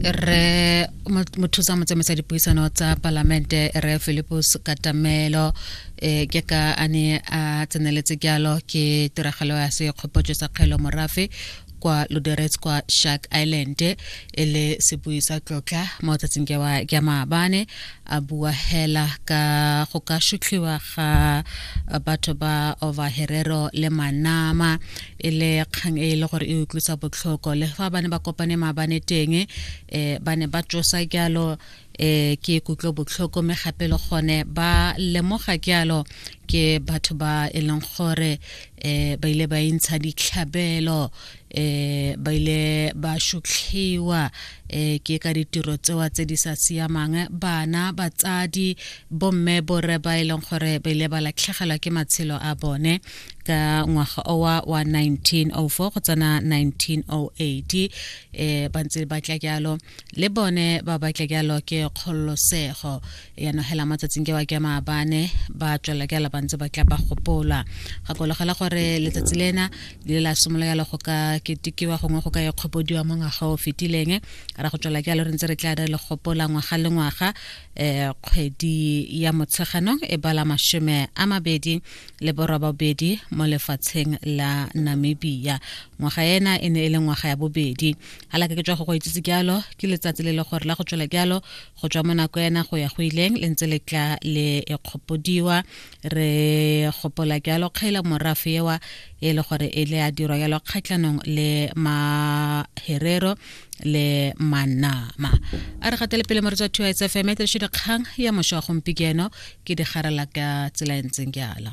re mothusa motsamaiso dipuisano tsa palamente re philipus katamelo e ke ka a ne a tseneletse jalo ke tiragalo ya sekgopotso sa kgelo morafe kwa loderets kwa shark island e le sebui sa tlotla mo tsatsing ke maabane a bua hela ka go ka shutlhiwa ga batho ba overherero le manama e le kgang e e le gore e utlwisa botlhoko le fa ba ne ba kopane maabane teng um ba ne ba tsosa jalo um ke kutlo botlhoko mme gape le gone ba lemoga jalo ke batho ba e leng gore um ba ile ba intsha ditlhabelo um ba ile ba shutlhiwa um ke ka ditiro tsewa tse di sa siamang bana batsadi bomme borre ba e leng gore ba ile ba latlhegelwa ke matshelo a bone ka ngwaga owa wa 1904 go tsena 1908 um eh, ba ntse ba tla jalo le bone ba batla jalo ke kgololosego yanong hela matsatsing ke wa ke maabane ba tswela jalo ba ntse ba tla ba gopola gakologela gore letsatsi lena le la simolola jalo go ka ketekiwa gongwe go ka e kgopodiwa mo ngwaga o fetileng ra go tswela jalo re ntse re tla re le gopola ngwaga le ngwaga um kgwedi ya motsheganong e bala masome a mabedi le borobabedi mo lefatsheng la namibia ngwaga ena e ne e le ngwaga ya bobedi halaka ke tswa go go itsitse jalo ke letsatsi le le gore la go tswela jalo go tswa mo nako ena go ya go ileng le ntse le tla le e kgopodiwa re gopola jalo kgaela morafe ewa e le gore e le a dirwa jalo kgatlhanong le maherero le manama a re gatele pele moretsa two s fm e tiriše dikgang ya mošwa gompieno ke digarela ka tsela e ntseng ke ala